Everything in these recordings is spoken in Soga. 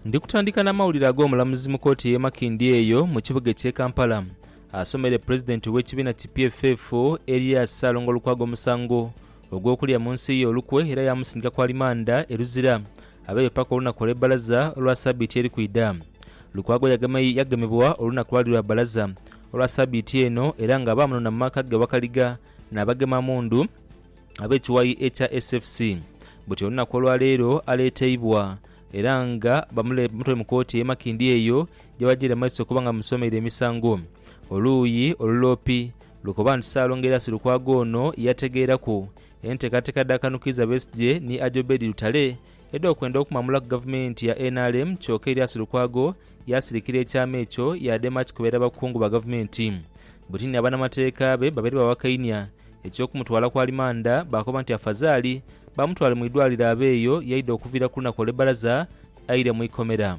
Ndi kutandika na mawulire ag'omulamuzi mu kooti eye Makindye eyo mu kibuga ekye Kampala asomere pulezidenti we kibiina ki PFF Erias Ssalongo Lukwago omusango ogw'okulya mu nsi ye olukwe era yamusindika ku alimanda e Luzira abeeyo paka olunaku olwe balaza olwa sabiiti eri kwidha. Lukwago yagemebwa olunaku lwali lwa balaza olwa sabiiti eno era nga baamunona mu maka ge Wakaliga nabagema mundu. ab'ekiwayi ekya SFC buti olunaku olwaleero aleeteibwa era nga bamutwaire mu kooti e Makindye eyo gyebagyeire mu maiso okuba nga bamusomeire emisango. Oluuyi oluloopi lukoba nti Ssaalongo Erasi Lukwago ono yategeeraku enteekateeka dha Kanukiiza Besigye ni Ajobedi Lutale edh'okwenda okumwamulaku gavumenti ya nrm kyoka Erias Lukwago yaasirikira ekyama ekyo yaadema akikubera abakungu ba gavumenti buti ni abanamateeka be babeere bawakainia Eky'okumutwala ku alimanda, baakoba nti afazaali bamutwale mu idwaliro abe eyo y'aidha okuviira ku lunaku olw'ebbalaza aire mu ikomera.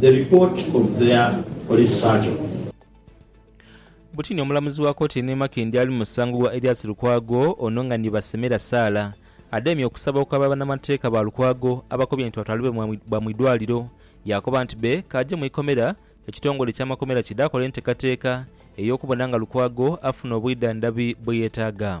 The report of their police surgeon. Butini omulamuzi wa kooti eno e Makindye ali mu musango gwa Erias Lukwago ono nga ni Basemera Sarah adhaimya okusaba okwaba banamateeka ba Lukwago abakobye nti batwalibwe bwa mu idwaliro yakoba nti be kaaje mu ikomera ekitongole ekya makomera kidhakole entekateka eyokubona nga Lukwago afuna obwidhandhabi bweyetaaga.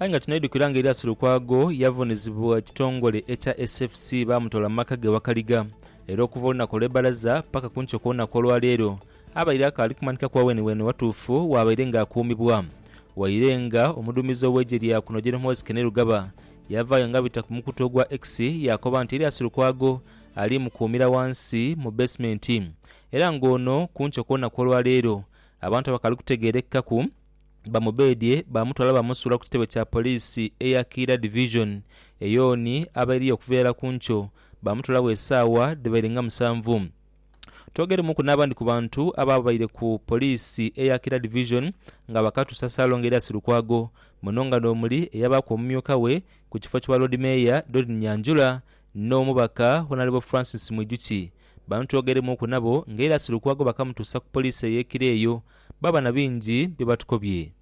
Aye nga tunaidhukira nga Erias Lukwago yavunizibwa ekitongole ekya SFC baamutoola mu maka ge Wakaliga era okuva olunaku olw'ebbalaza paka ku nkyo kw'olunaku olwaleero Abaire akaali kumanhika kwa wenibweni watuufu waabaire nga akuumibwa, waire nga omuduumizi ow'eigye lya kuno Gen Muhoozi Kainerugaba yavaayo nga bita ku mukutu ogwa X yaakoba nti Erias Lukwago ali mukuumira wansi mu beesimenti era nga ono ku nkyo kw'olunaku olwa leero abantu abakaali kutegeerekaku bamubeedhye baamutwala baamusuula ku kitebe kya poliisi eya Kiira Division eyooni abairiyo okuva irala ku nkyo baamutwalagho esaawa dhibaire nga musanvu. Twogeremuku n'abandi ku bantu abaabaire ku poliisi eya Kira Division nga bakatusa Ssalongo Erias Lukwago muno nga n'omuli eyabaaku omumyuka we ku kifo kya Loodi Meeya Doreen Nyanjura n'omubaka Honalebo Francis Mwijukye. Bano twogeremuku nabo nga Erias Lukwago bakamutusa ku poliisi ey'e Kira eyo baaba na bingi bye batukobye.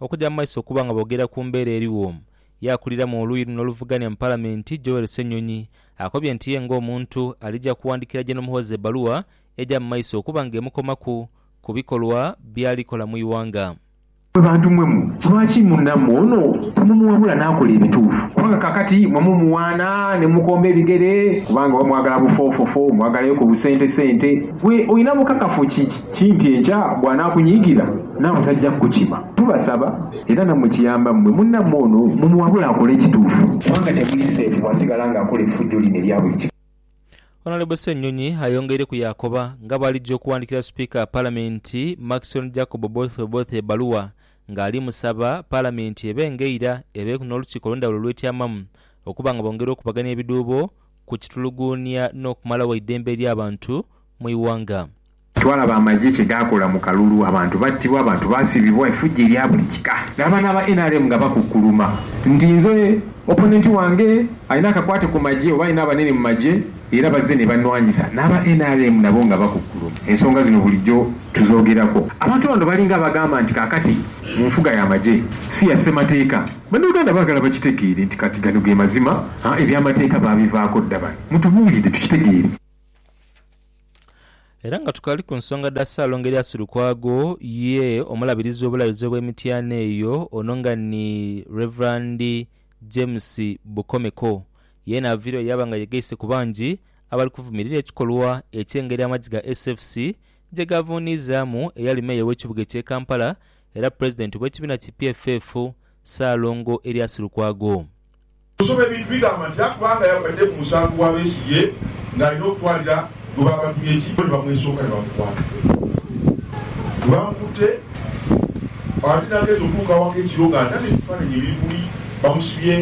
Okuja mu maiso okuba nga boogera ku mbeera eriwo, ye akulira mu oluuyi luno oluvugania mu Palamenti, Joel Ssenyonyi, akobye nti ye ng'omuntu alija kuwandikira Gen Muhoozi ebbaluwa eja mu maiso okuba nga emukomaku ku bikolwa byali kola mu ighanga. Mwe bantu mwe mu lwaki munamwe ono temumuwabula nakola ebituufu kubanga kakati mwe mumuwaana nemukomba ebigere kubanga oba mwagala bufoofofo mwagalayo ku busente sente gwe olina bukakafu ki nti enkya bwanakunyiigira? Nawe taja kukukima. Tubasaba, era nammwe kiyamba mmwe, munnammwe ono mumuwabule akole ekituufu. Kubanga temuli seefu bw'asigala ng'akola effujjo lino erya buli kika. Honourable Ssenyonyi ayongeire ku yaakoba nga bw'alija okuwandikira Sipiika wa Palamenti, Maxon Jacob Oboth Oboth ebaluwa ng'ali musaba Palamenti ebe ng'eira ebeeku n'olukiiko olw'endhawulo olwetyamamu okuba nga bongera okubagania ebidhuubo ku kituluguunia n'okumalawo eidembe ly'abantu mu ighanga. Twalaba amagye kye gaakola mu kalulu, abantu battibwa, abantu baasibibwa, efujjo erya buli kika. Naaba n'aba nrm nga bakukkuluma nti nze opponent wange alina akakwate ku magye oba alina abanene mu magye era bazze ne bannwanyisa. N'aba nrm nabo nga bakukkuluma. Ensonga zino bulijjo tuzoogerako. Abantu bano balinga abagamba nti kaakati mu nfuga y'amagye si ya ssemateeka. Bannayuganda baagala bakitegeere nti kati gano ge mazima, eby'amateeka baabivaako dda. Bano mutubuulire tukitegeere. Era nga tukali ku nsonga dha Ssaalongo Elias Lukwago, ye omulabirizi w'Obulabirizi obw'Emityana eyo ono nga ni Rev. James Bukomeko, yeena aviireyo yaaba nga yegaise ku bangi abali kuvumirira ekikolwa eky'engeri amagye ga SFC gye gaavuuniizaamu eyali Meeya w'ekibuga eky'e Kampala era Pulezidenti w'ekibiina ki PFF, Ssaalongo Elias Lukwago. Osoma ebintu bigamba nti akuba nga yagwadde mu musango gwa Besigye nga alina okutwalira gwe baabatumye ki bo ni bamwesooka ni bamukwata. Bwe baamukutte ate n'agenze okutuuka awaka ekiro ng'anhana ebifaananyi ebiri buli bamusibye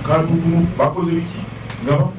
kantungulu bakoze biki nga bamu.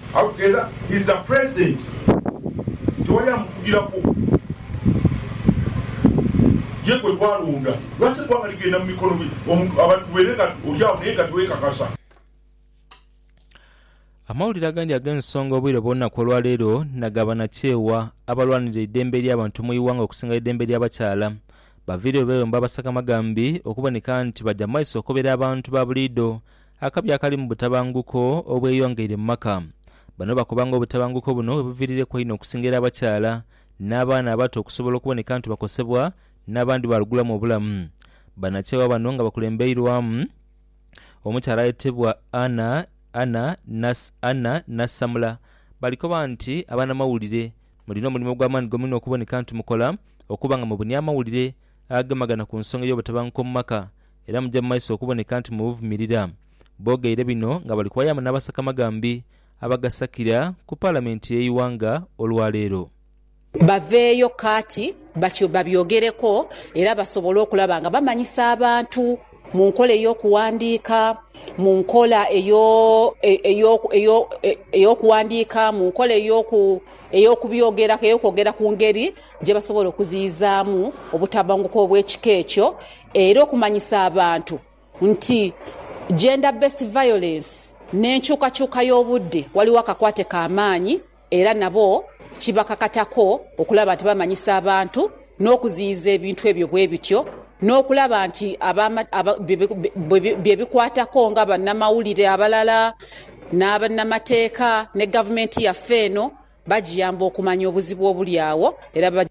How together he's the president tewali amufugiraku ye gwetwalonda lwaki egwanga ligenda mumikono gye omuntu abantu bere nga olyagho naye nga tewekakasa. Amawulire agandi ag'ensonga obwire bw'olunaku olwaleero naga banakyewa abalwanirira eidembe ly'abantu mu iwanga okusinga eidembe ly'abakyala baviireyo beyomba Basakamagambi okuboneka nti baja mumaiso okukobera abantu babuliido Akabi akali mu butabanguko obweyongeire mu maka. Bano bakoba nga obutabanguko buno bwebuviirireku einho okusingera abakyala n'abaana abato okusobola okuboneka nti bakosebwa n'abandi baalugulamu obulamu. Banakyewa bano nga bakulembeirwamu omukyala ayetebwa Anna Anna Nas Anna Nassamula bali koba nti abanamawulire mulina omulimo ogw'amaani gomwine okuboneka nti mukola okuba nga mubunia amawulire agemagana ku nsonga y'obutabanguko mu maka era muja mu maiso okuboneka nti mubuvumirira. Boogeire bino nga bali kwayaamu n'abasakamagambi abagasakira ku Palamenti y'eighanga olwa leero. baveeyo kaati batyo babyogereko era basobole okulaba nga bamanyisa abantu mu nkola ey'okuwandiika, mu nkola ey'okuwandiika, mu nkola ey'okubyogeraku, ey'okwogera ku ngeri gye basobola okuziyizaamu obutabanguko obw'ekika ekyo era okumanyisa abantu nti Gender Based Violence n'enkyukakyuka y'obudde waliwo akakwate ka maanyi era nabo kibakakatako okulaba nti bamanyisa abantu n'okuziyiza ebintu ebyo bwe bityo n'okulaba nti be bikwatako nga bannamawulire abalala, bannamateeka ne gavumenti yaffe eno. Bagiyamba okumanya obuzibu obuli agho era.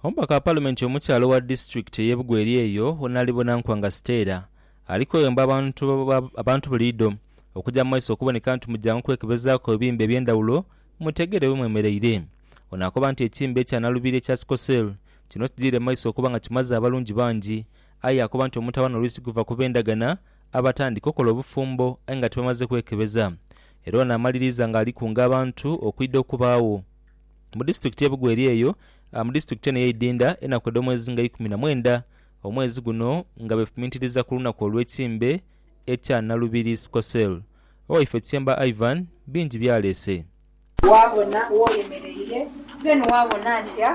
Omubaka wa Palimenti omukyala owa disitulikiti ey'e Bugweri eyo Wonalibona Nkwanga Stella ali kwewemba abantu buliidho okugya mu maiso okuboneka nti mugyangu kwekebezaaku ebibimba eby'endhawulo mutegeere we mwemereire. Ono akoba nti ekibimba ekya nalubiri ekya Sicklecell kino kijiire maiso okuba nga kimaze abalungi bangi aye akoba nti omutawaana oluisi guva ku b'endagana abatandika okola obufumbo aye nga tibamaze kwekebeza era ono amaliriza nga alikunga abantu okwidha okubaagho mu disitulikiti ye Bugo eri eyo mu disitulikiti eno eyeidhindha enaku edhomwezi nga ikumi na mwendha omwezi guno nga befumintiriza kulunaku olwekimbe ekya Nalubiri Sickle Cell. Owaife Tyemba Ivan bingi byaleese. Waabona woyemereire then waabona ntya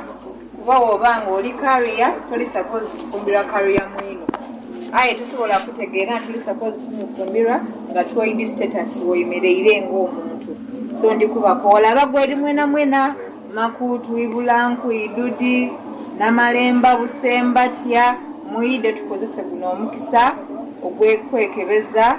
kuba woba nga oli carrier toli supposed kufumbirwa carrier mwino aye tosobola kutegeera nti oli supposed kumufumbirwa nga twoidi status woyemereire nga omuntu so ndi kubako olaba gweri mwena mwena makuutu ibulanku idudi namalemba busemba tya mwide tukozese guno omukisa ogwekwekebeza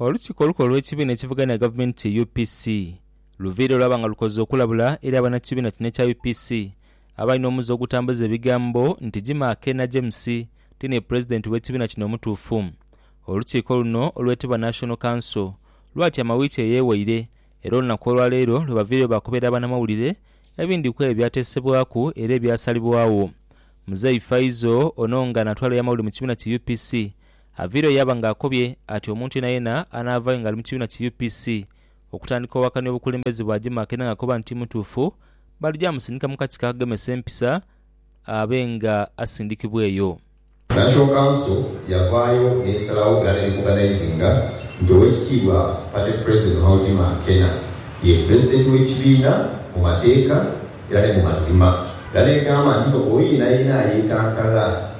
Olukiiko olukulu olw'ekibiina ekivuganya gavumenti UPC luviire lwaba nga lukoze okulabula eri abannakibiina kino ekya UPC abalina omuze ogutambuza ebigambo nti Jimah Akena James ti ni pulezidenti w'ekibiina kino omutuufu. Olukiiko luno olwetebwa National Council lwatyama wiiki eyewaire era olunaku olwaleero lwebaviireyo baakobera abanamawulire ebindi kwebyo ebyatesebwaku era ebyasalibwagho. Muzei Faizo ono nga natwala eyamawulire mu kibiina ki UPC Avira ye yaba nga akobye ati omuntu yenayena anaavayo nga ali mu kibiina ki UPC okutandika owakania obukulembeze bwa Jimah kena nga akoba nti timutuufu balija musindika mu kakiko akagemesa empisa abe nga asindikibwa eyo. National Council yavaayo nesalagho era nerikoganayizinga nti Owekitiibwa Party President Maho Jimah Kena ye Pulezidenti w'ekibiina mu mateeka era ni mu mazima era negamba nti oyo yenayena ayekankalra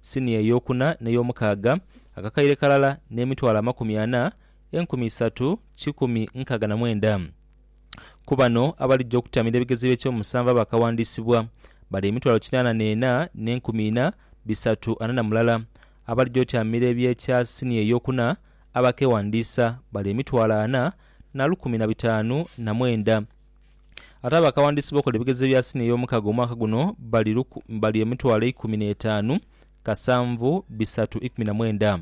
siniya eyookuna n'eyoomukaaga, akakaire kalala n'emitwalo amakumi ana, enkumi isatu, kikumi nkaaga na mwenda. Ku bano abalija okutamiira ebigezo eby'ekyomusanvu abaakawandiisibwa, bali emitwalo kinaana n'ena n'enkumi ina, bisatu ana na mulala. Abalija otamiira eby'ekya siniya eyookuna abaakeewandiisa, bali emitwalo ana na lukumi na bitaanu na mwenda. Ate abakawandiisi b'okola ebigezo ebya siniya ey'omukaga omwaka guno bali luku, bali emitwalo eikumi n'etaanu, kasanvu, bisatu, ikumi na mwenda.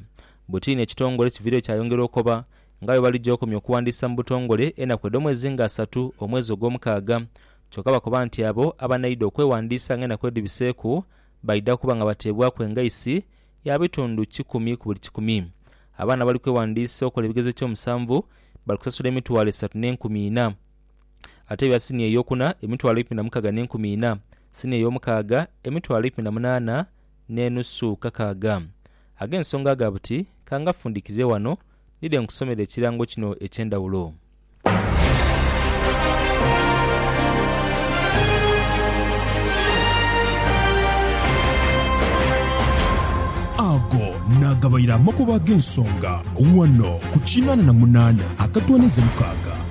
Bwetiini ekitongole kiviireyo kyayongera okoba nga bwe baligya okomya okuwandiisa mu butongole enaku edh'omwezi nga asatu omwezi ogw'omukaaga. Kyoka bakoba nti abo abanaidha okwewandiisa nga enaku edhibiseeku baidha kuba nga bateebwaku engaisi ya bitundu kikumi ku buli kikumi. Abaana abali kwewandiisa okola ebigezo eky'omusanvu bali kusasula emitwalo esatu n'enkumi ina. Ate ebya siniya ey'okuna, emitwalo eikumi na mukaaga n'enkumi ina. Siniya ey'omukaaga, emitwalo eikumi na munaana n'enusu kakaaga. Ag'ensonga aga buti, ka ngafundikirire wano, nidhe nkusomere ekirango kino eky'endhawulo. Ago naagabaire amakubo ag'ensonga wano ku kinaana na munaana akatooneza mukaaga.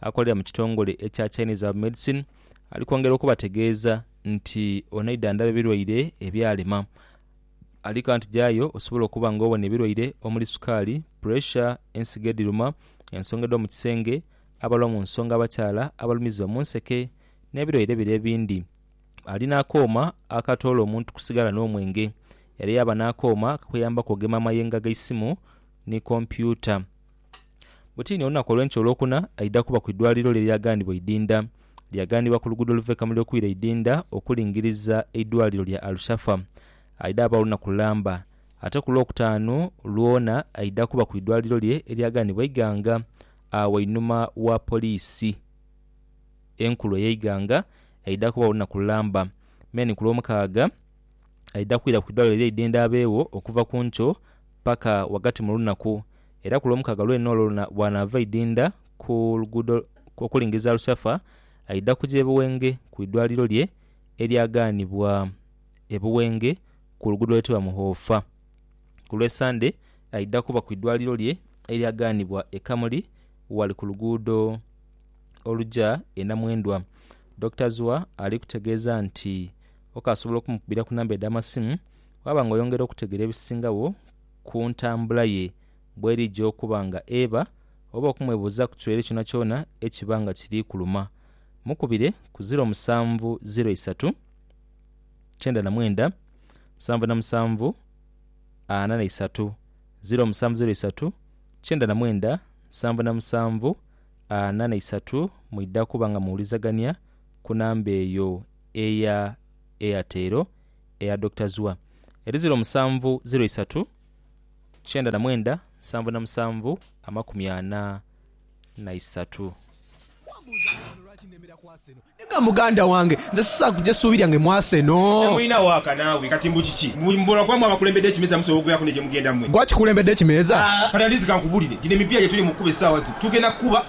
akolera mu kitongole ekya Chinese Herbal Medicine ali kwongera okubategeeza nti ono aidha ndhabe birwaire ebyalema. Ali kanti jaayo osobole okuba nga owona ebirwaire omuli sukaali, puresha, ensigo edhiruma, ensonga edh'omu kisenge, abalwa mu nsonga abakyala, abalumizibwa mu nseke n'ebirwaire bire ebindhi. Ali n'akooma akatoola omuntu ku sigala n'omwenge era yaaba n'akooma akakuyambaku okugema amayengo ag'eisimu ni kompyuta. Butini olunaku olw'enkya Olwokuna aidha kuba ku idwaliro lye lyaghanibwa eidhindha. Lyaghanibwa ku luguudo oluva e Kamuli okwira eidhindha okulingiriza eidwaliro lya Al-Shafa. Aidha baawo olunaku lulamba. Ate ku Lwokutaanu lwona aidha kuba ku idwaliro lye eryaghanibwa eighanga agho einhuma wa poliisi enkulu ey'eighanga. Aidha kubagho olunaku lulamba. Meni ku Lwomukaaga. aidha kwira ku idwaliro eira eidhendhe abeegho okuva ku nkyo paka ghagati mu lunaku era ku Lwomukaaga lwene olwo lwona bw'anaava aidhinda ku luguudo okulingiriza Rusafa aidha kuja e Buwenge ku idwaliro lye eryagaanibwa e Buwenge ku luguudo olwetebwa Muhoofa. Ku Lwesande aidha kuba ku idwaliro lye eryagaanibwa e Kamuli ghali ku luguudo oluja e Namwendwa. Dokita Zua ali kutegeeza nti. Okasobola okumukubira ku namba edh'amasimu waaba nga oyongera okutegeera ebisingagho ku ntambula ye bw'erija okuba nga eba oba okumwebuuza ku kirwaire kyonakyona ekiba nga kiri kuluma. Mukubire ku ziro musanvu ziro isatu, kyenda na mwenda, nsanvu na musanvu, ana na isatu, ziro musanvu ziro isatu, kyenda na mwenda, nsanvu na musanvu, ana na isatu mwidha kuba nga muwulizagania ku namba eyo. eya Airtel eya Doctor Zua eri ziro musanvu ziro isatu kyenda na mwenda nsanvu na musanvu amakumi ana na isatu. Wambuuza nti, Wano lwaki nnemera ku Arsenal? Ne nga muganda wange, nze sisaaku gye ssuubi lyange mu Arsenal. Temulina waaka naawe, kati mbu kiki? Mbu mbula kuba mwe abakulembedde ekimeeza musobola okubeeraku ne gye mugenda mwe? Gwe akikulembeddeko ekimeeza? Kati at least kankubulire, gino emipiira gye tuli mu kukuba essaawa zino tugenda kukuba.